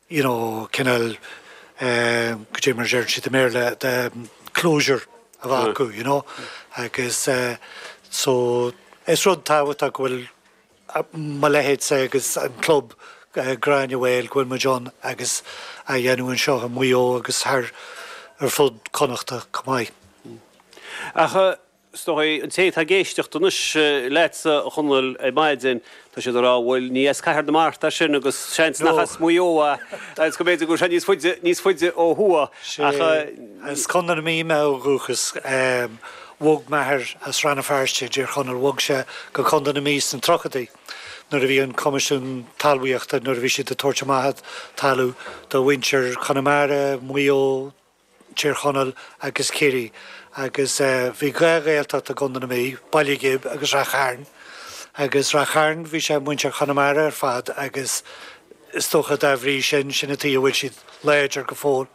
you know cineál eh go dtí mar a deir siad i mBéarla the closure a bheith acu you know agus eh, so is rud tábhachtach go bhfuil a- mo leithéidse agus an club eh, Gráinne Mhaol go bhfuil muid ann agus a dhéanamh anseo i Maigh Eo agus thar ar fud Connachta chomh maith. Ach eh, Is dóigh, an té atá ag éisteacht anois leatsa, a Chonaill, ar maidin, tá siad ag rá, bhuel, ní as Cathair na Mart é sin agus seans nach as Maigh Eo agus go mb'fhéidir go bhfuil sé níos faide ó thuaidh ach. As Contae na Mí mé ó dhúchas. Bhog m'athair as Rann na Feirste i dTír Chonaill, bhog sé go Contae na Mí sna tríochaidí nuair a bhí an Coimisiún Talmhaíochta, nuair a bhí siad ag tabhairt amach talamh do mhuintir Chonamara, Mhaigh Eo, Tír Chonaill agus Ciarraí agus bhí dhá Ghaeltacht i gContae na Mí, Baile Ghib agus Ráth Chairn. Agus Ráth Chairn, bhí sé muintir Chonamara ar fad agus is dócha dá bhrí sin, sin an tuige a bhfuil siad láidir go fóill.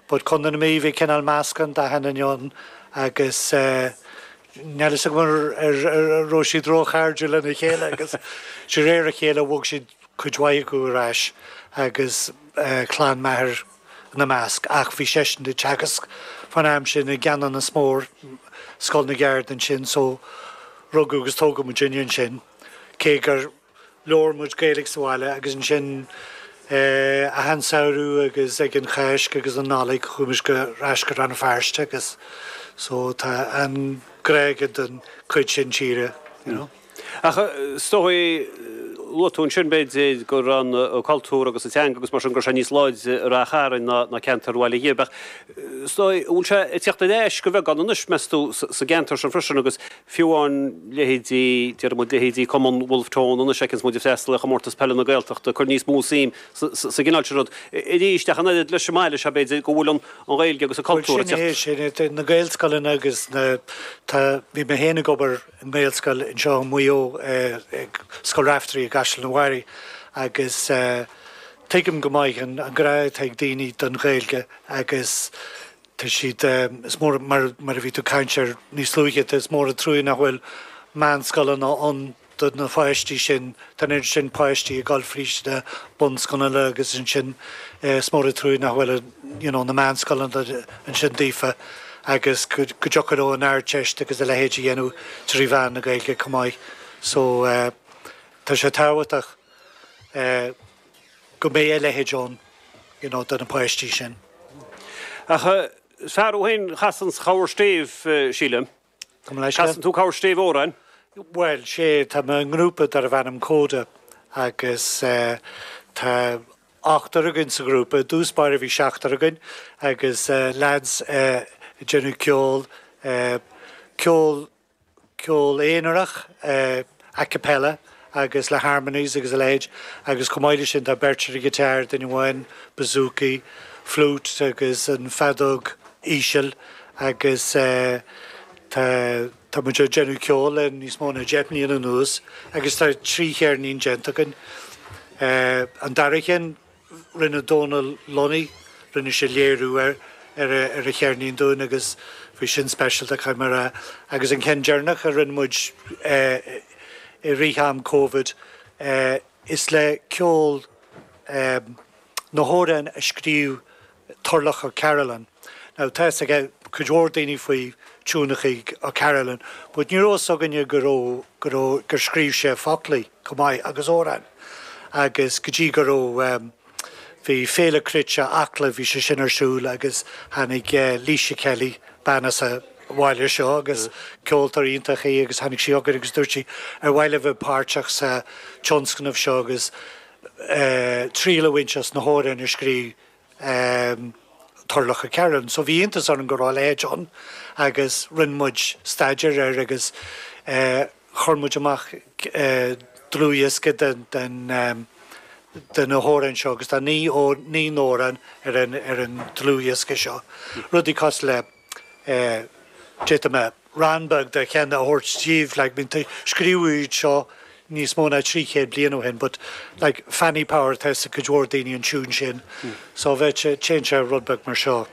But Contae na Mí, bhí cineál meascán d'achan duine ann agus níl a fhios agam an raibh siad róchairdiúil lena chéile agus de réir a chéile bhog siad, cuid mhaith acu, ar ais agus clann m'athair ina measc, ach bhí seisean ag teagasc fán am sin i gCeanannas Mór, Scoil na gCeard ansin, so rugadh agus tógadh muid ansin, cé gur labhair muid Gaeilge sa bhaile agus ansin achan samhradh agus ag an Cháisc agus an Nollaig chuaigh muid ar ais go Rann na Feirste agus so tá an grá aige don chuid sin tíre, you know. Ach is dóigh, luaigh tú ansin, b'fhéidir, go raibh an cultúr agus an teanga agus mar sin, go raibh sé níos láidre i Ráth Chairn ná ná ceantar Bhaile Ghib. Ach is dóigh, an bhfuil sé ag teacht ar ais de bheagán anois, meas tú, sa gceantar sin freisin agus fiú amháin leithéidí, déarfaidh muid, leithéidí Cumann Wolfe Tone anois a fheiceanns muid ag freastal ar Chomórtas Peile na Gaeltachta ag cur níos mó suim sa gcineál sin rud. Arís, ach an oiread leis an mbaile seo, b'fhéidir, go bhfuil an an Ghaeilge agus an cultúr ag teacht. Bhuel, sin é, sin é. Na Gaelscoileanna agus na, tá, bhí mé féin ag obair, nGaelscoil anseo i Maigh Eo, Scoil Raifteirí i gCaisleán an Bharraigh, agus tuigim go maith an grá atá ag daoine don Ghaeilge agus tá siad, is mór, mar a bhí tú ag caint air níos luaithe, tá, is mór an truaí nach bhfuil meánscoileanna ann do na pháistí sin, tá an oiread sin páistí ag dul fríd na bunscoileanna agus ansin is mór an truaí nach bhfuil an. you know, na meánscoileanna ansin daofa agus go dtiocfadh leo an Ardteist agus a leithéid a dhéanamh trí mheán na Gaeilge chomh maith. So tá sé tábhachtach go mbeidh a leithéid ann, you know, do na páistí sin. Ach is fearr ó shin chas an chabhair stéibh, sílim. Casann tú, Cathal, stíl amhráin? Bhuel, sea, tá mé i ngrúpa darbh ainm Coda agus tá ochtar againn sa ghrúpa. I dtús báire bhí seachtar againn agus leaids ag déanamh ceol, ceol, ceol aonarach. a cappella agus le harmonies agus a leithéid, agus chomh maith leis sin tá beirt ar an ghiotár, duine amháin bouzouki, flute agus an feadóg íseal agus tá tá muid ag déanamh ceoil le níos mó ná deich mbliana anuas agus tá trí cheirnín déanta againn. An dara cheann. Rinne Dónal Lunny, rinne sé léiriú ar ar an cheirnín dúinn agus bhí sin speisialta, caithfidh mé a rá. Agus an ceann deireanach a rinne muid i rith am Covid, is le ceol na hamhráin a scríobh Turloch O'Carolan. Now tá fhios ag cuid mhór daoine faoi thiúnachaí O'Carolan but ní raibh fhios againne go raibh, go raibh, gur scríobh sé foclaí chomh maith agus amhráin agus go dtí go raibh ehm, bhí Féile Cruite Acla bhí sé sin ar siúl agus tháinig eh Laoise Kelly, bean as an bhaile seo agus ceoltóir iontach í agus tháinig sí chugainn agus dúirt sí ar mhaith libh bheith páirteach sa tionscnamh seo agus eh triail a bhaint as na hamhráin a scríobh um Turloch O'Carolan. So bhí iontas orainn go raibh a leithéid ann agus rinne muid staidéar air agus eh chuir muid amach eh dlúthdhiosca den den um de na hamhráin seo agus tá naoi naoi n-amhrán ar an ar an dlúthdhiosca seo. Rudaí cosúil le. d'fhéadfadh mé rann beag de cheann a thabhairt daoibh like scríobhadh iad seo níos mó ná trí chéad bliain ó shin but like Fanny Power tá fhios ag cuid mhór daoine an tiún sin so bheadh sé téann sé rud beag mar seo.